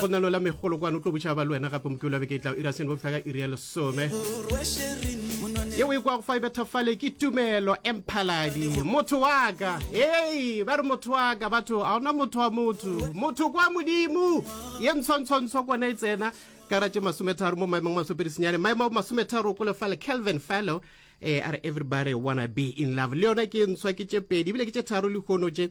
go na lola megolo kwane o tlo botšha ba le wena gape mokelo beke e tla ira seno bofihla ka iri ya lesome ye o e kwa go fa e bethafale ke tumelo emphaladi motho wa ka ee ba re motho wa ka batho ga ona motho wa motho motho kwa modimo ye ntshwantshwantsho kwana e tsena karatše masometharo mo maemong masopedi senyane maemo a masometharo ko lefale calvin fallow um eh, a re everybody wanna be in love le yona ke ntshwa ke tše pedi ebile ke tše tharo lehono tše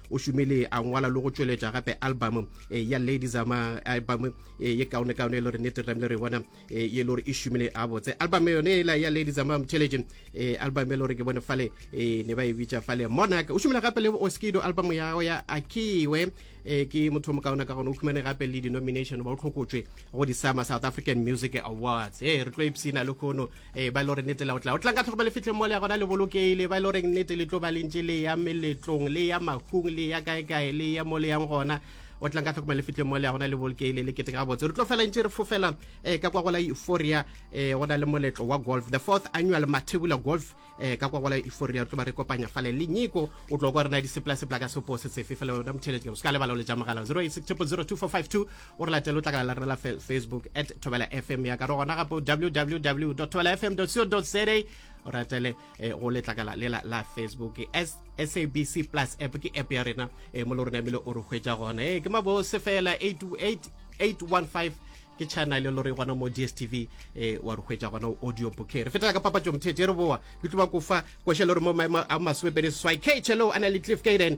o šomile a ngwala le go tšweletša gape album e, ya ladies ama album e, ye kaone kaone e le gore nete ramle re bona e, ye le gore e šomile a botse album yone ela ya ladies ama intelligent album e le gore ke bone fale ne ba e bitša fale monarch o šomile gape le oskido album yago ya akiwe ke motho mo kaona ka gone o khumane gape le denomination ba o tlhokotšwe go di-sama south african music awards e re tlo ipsina le khono ee ba e le gore nnete la o tla o tlang ka tlhokomelo fitlheng mo le ya gona le bolokeile ba e le goreng nnete le tlo ba lentše le ya meletlong le ya makgong le ya kaekae le ya mo le yang gona o tlang ka tlhokomelo fitlheng mo le ya gona le bolokeile le kete ka botse re tlo fela ntse re fofela um ka kwa gola euphoria um go na le moletlo wa golf the fourth annual mathebula golf um ka kwa gola euphoria re tlo ba re kopanya fale le nyiko o tlo kwa rena diseplasepla ka sepo se tsefe fela yona motheletšo se ka lebala o le ja mogala 086 002 452 o re latele o tlakala la rela facebook at thobela fm ya ka re gona gape www thobela fm co za o ratele eh, go letlakala lela la facebook sabc plus app ke app ya rena eh, mo le rona ebile o re hwetša gona e ke mabose fela 815 ke channel e lore gona mo dstv um eh, wa re hwetša gona audio booker re fetela ka papatso mthete re boa ke tlo ba kofa košhe le gore mo maemo a masomepedi seswai kchelo a na le cliff kaden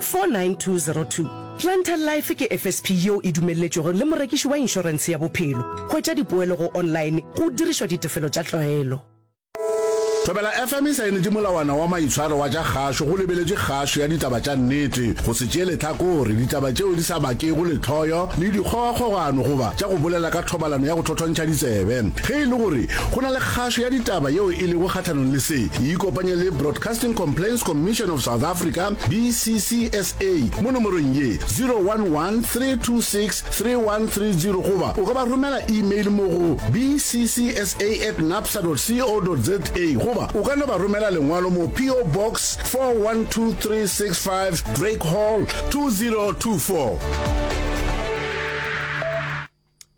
49202. Planter Life ke FSP yeo e dumelletšwego le morekiši wa inšorense ya bophelo. Hwetša dipoelo go online go dirišwa ditefelo tša tlwaelo. Thobela FM e saenetše molawana wa maitshwaro wa tša kgašo go lebeletše kgašo ya ditaba tša nnete, go se tšee lehlakore, ditaba tšeo di sa bakego lehloyo le dikgogakgogano goba tša go bolela ka thobalano ya go thothontšha ditsebe. Ge e le gore go na le kgašo ya ditaba yeo e lego kgahlanong le se, ikopanye le Broadcasting Broadcasting Complaints Commission of South Africa, BCCSA, mo nomorong ye, 011 326 3130 goba o ka ba romela email mo go bccsa at napsa dot co dot za goba o ka no ba romela lengwalo mo PO Box 412365 Drake Hall 2024.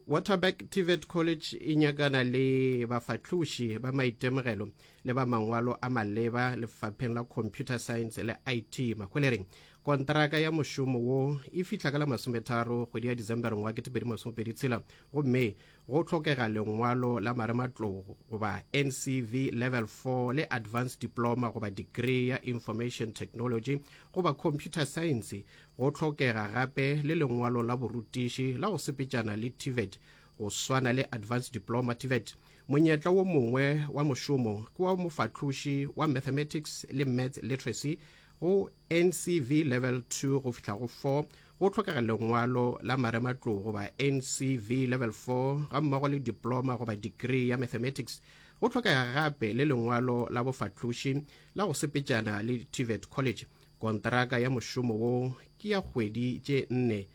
Waterberg TVET College e nyakana le bafahloši ba maitemogelo le ba mangwalo a maleba lefapheng la computer science le it mahwelereng kontraka ya mošomo wo e fihla ka la masometharo kgwedi ya december ngwa ketepedi masomepedi tshela gomme go tlhokega lengwalo la marematlogo goba ncv level 4 le advanced diploma goba degree ya information technology goba computer science Go hlokega gape le lengwalo la borutiši la go sepetšana le TVET go swana le Advanced Diploma TVET. Monyetla wo mongwe wa mošomo ke wa mofahloši wa Mathematics le Maths Literacy go NCV Level 2 go fihla go 4. Go hlokega lengwalo la marematlou goba NCV Level 4 ga mmogo le diploma goba degree ya Mathematics. Go hlokega gape le lengwalo la bofahloši la go sepetšana le TVET College. Kontraka ya mošomo wo ke ya kgwedi tše nne,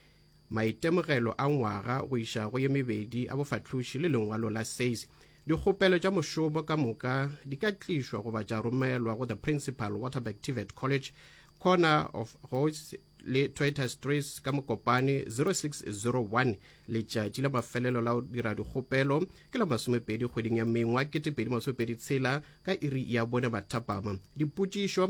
maitemogelo a ngwaga go iša go ye mebedi a bofahloši le lengwalo la SACE. Dikgopelo tša mošomo ka moka di ka tlišwa goba tša romelwa go the Principal, Waterberg TVET College, Corner of Hoyts le Toyota Streets ka Mokopane 0601. Letšatši la mafelelo la go dira dikgopelo ke la masomepedi kgweding ya Mengwa 2026 ka iri ya bone mathapama. Dipotšišo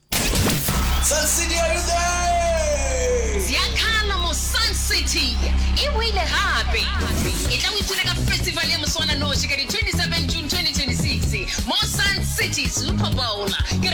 Sun City, are you there? Bjalo mo Sun City e boile gape. E tla o ipone ka festival ya moswananoši ka di 27 June 2026 mo Sun City Super Bowl.